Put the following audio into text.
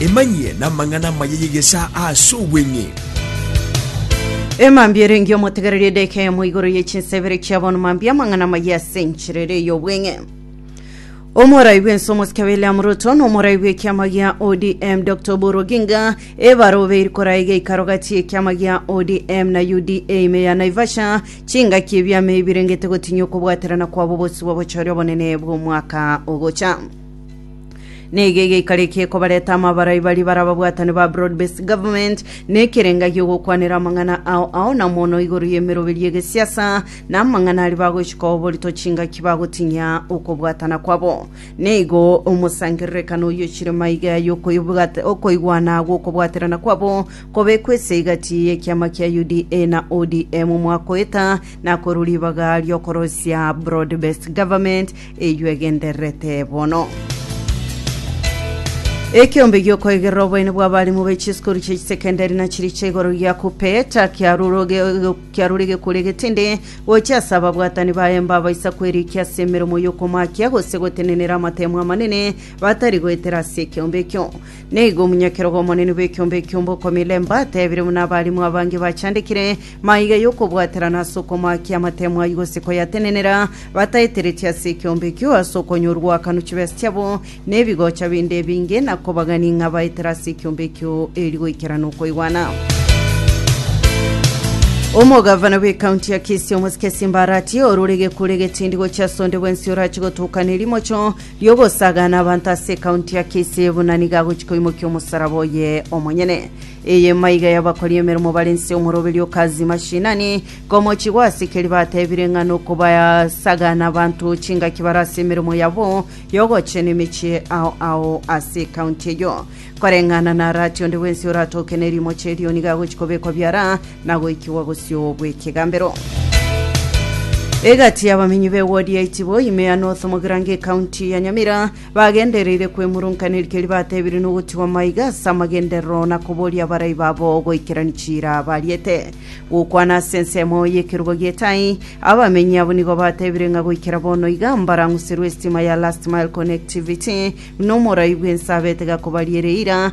Emanyie namang'ana amaya y'egesaa aase obweng'e. Emambia erenge omotegereria edeka eyemo igoro ye chinsa ibere chia bono mambia amang'ana amaya ase enchera ere ey'obweng'e omorai bw'ense omosike william ruto na omorai bw'ekiama gia odm dr oburu oginga ebarobe eri korai geikaro gati y'ekiama gia odm na uda ime ya naivasha chingaki ebiama ebi birengete gotinyia okobwaterana kwabo obosio bw'obochori obonene bw'omwaka ogocha Neiga egeikarekie kobareta amo abarai bari bara ababwatani ba broad based government nekerenga giogokwanera amang'ana ao ao na mono igoro y'emeroberi y'egesiasa na amang'ana ari bagochika oborito chingaki bagotinyia okobwatana kwabo neigo omosangererekano oyo chire maiga ya yokoibwata- okoigwana gwokobwaterana kwabo kobekwa ase egati y'ekiama kia UDA na ODM mwakoeta na korwa ribaga riokorosia broad based government Eyio egendererete bono. Ekeombe giokoigerera oboene bw'abarimu be chisukuru chia chisekendari na chiria chia igoro gia Kupeta kiarure gekoria getindi gochia ase ababwatani baye mbabaisa kwerikia ase emeremo y'okomakia gose gotenenera amatemo amanene batari goetera ase ekeombe ekio. Nigo omonyakerogo omonene bw'ekeombe ekio Mbokomile Mba atebire buna abarimu abange bachandekire Maiga y'okobwaterana ase okomoakia amatemo ayio gose koyatenenera, bataeteretie ase ekeombe ekio, ase okonyorwa akanu chibesa chiabo na ebigocha binde ebinge, na kobagani ng'a baetere ase ekeombe ekio eeri goikera nokoigwana. Omogavana bw'ekaunti ya Kisii omosike Simba Arati orore gekure getindi gochia ase onde bwensi orachi gotokana erimocho ri'ogosagana abanto ase ekaunti ya Kisii buna nigo agochi koimokia omosaraba oye omonyene. Eye maiga y'abakori emeremo bare nse omoroberio o Kazi Mashinani, komochigwa ase keri batebire ng'a nokobasagana abanto chingaki bare ase emeremo yabo y'ogochena emechie ao ao ase ekaunti eyio. Koreng'ana na Arati onde bwensi oratoke nerimochi erio nigo agochi kobekwa biara na goikigwa bosio bw'ekegambero. Egati y'abamenyi b'ewodi ya Itibo ime ya North Mogrange ekaunti ya Nyamira Bagendereire kwemurunkaneria keria batebirie na ogotigwa maiga ase amagenderero na koboria abarai babo goikerania chiira bariete. Gokwana ase ensemo y'ekerogo gi'etai, abamenyi abwo nigo batebire ng'a goikera bono iga mbarang'userwe esitima ya Last Mile Connectivity na omorai bw'ense abete gakobaria ere eira